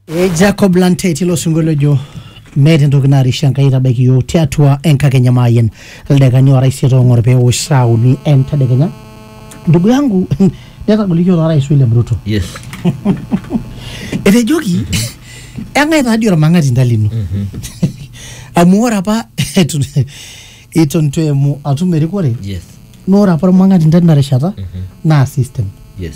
E Jacob Lantet ilo sinkolio ojo meeta entoki narisha Enkai aitabaiki iyiook tiatua enkakenya maayen ildakikani oora isiet oong'or pee eosh saa uni entedekenya. Ndugu yangu netagolikio taa Rais William Ruto. Yes. Etejoki eng'ae taa dii ormang'ati nta lino. Amu ore apa eton eton itu eimu atum erikore Yes. naa ore apa ormang'ati nta tina rishata naa system. Yes.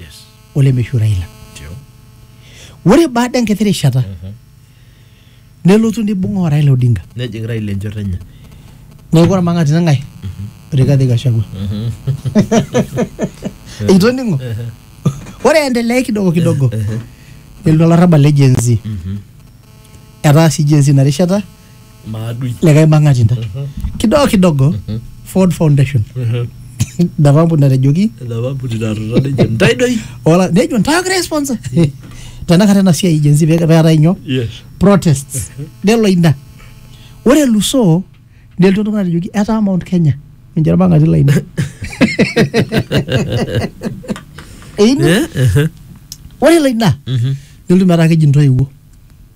Yes. olemeishu Raila. Ndio. Ore baada enkiti rishata nelotu neibung'aa o Raila Odinga. Nejing Raila enchoto enye. Neeku ormang'ati neng'ae? Rigathi Gachagua. Itoning'o? Ore endelea kidogo kidogo nelotu olarrabal le Gen Z. Etaa sii Gen Z ina rishata maadui likae mang'ati intae kidogo kidogo Ford Foundation ina kampuni natejoki enapampuni natuta ninche ntae doi ola nejo ntae ogira aisponsor tenakata ena siai jenzi peetae nyoo yes protests nelo ina ore elusoo nelotu oltung'ani atejoki etaa Mount Kenya ninche irmang'ati lainei Einu- Eh, eh, ore ilo ina mhm. nelotu metaa keji intoiwuo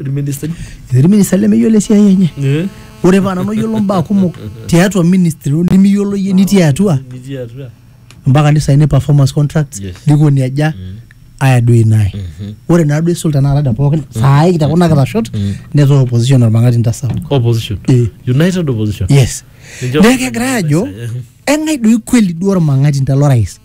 irministani etii irministani lemeyiolo esiai enye Eh, ore paa nanu oyiolo mbaa kumok tiatua ministry nimiyiolo yie nitii atua nitii atua mpaka nisaini performance contracts Yes. likoni aja aya duo inae ore naa duo isul tenakata te pookin saai tekuna kitashot netaa opposition ormang'ati ntasapuk opposition Eh. united opposition yes Ninche- neeku kegira aajo eng'ae doi kweli duo ormang'ati nta lorais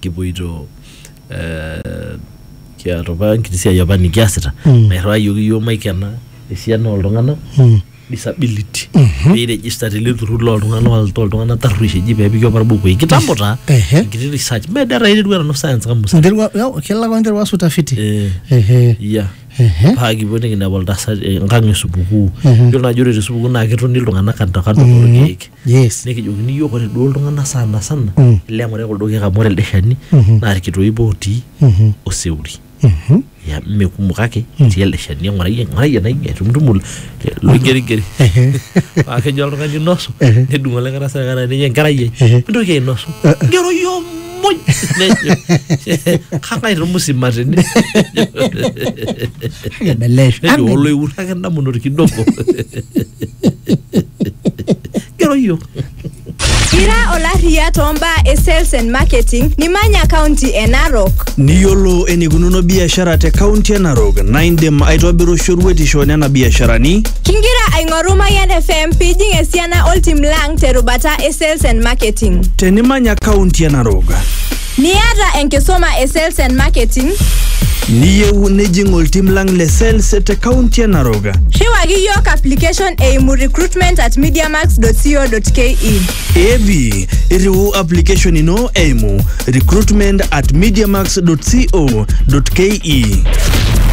kipoito eh, kiata apa enkiti siai apa nikiasita Mm. nairriwayioki yiok maikena esiana oltung'anak Mm. disability peirejista tele turrur loltung'anak wal- toltung'anak tarruesh eji pepiki apa irbukui kitambo taa Ehe. enkiti research medaa taa eiterua nanu science kamusa Nterua, ya, kelak wa nterua sutafiti. Eh. Ehe. iya Ehe. paa kipuo nikinepu oltasat eh, enkang esupukuu Mhm. yiolo naaji ore tesupukuu naa ketoni iltung'anak kando kando torkeek Yes. Nekijokini iyiook ore duo iltung'anak sana sana Mm. ile eng'orai kuldo keek amu ore elde shani Mhm. naa irkitoip ootii Mhm. oseuri. Mhm. Ya mme kumok kake etii elde shani eng'orai eng'orai ena ing'e tumutumu loigerigeri. Ehe. Paa kejo oltung'ani nosu Ehe. nedung' olikae tasat kata ninye enkerai ai Ehe. mintoki ainosu. Eh, eh. Ngero iyiook muj nejo kangae tomusima tene Kebelesh. nejo oloiwur ake ndamunot kidogo gero yiok Ira olarriya too mbaa e sales and marketing nimanya kaunti e Narok. Niyiolo enikununo biashara te kaunti e Narok naa indim aitobiru shoruetisho nena biasharani Kingira aing'oru Mayian FM pijing esiana oltim lang terubata e sales and marketing. Tenimanya kaunti e Narok, Niata enkisuma e sales and marketing, niyieu nijing oltim lang le sales te kaunti e Narok, riwaki yiok application eimu recruitment at mediamax.co.ke. evi irriu application ino eimu recruitment at mediamax.co.ke.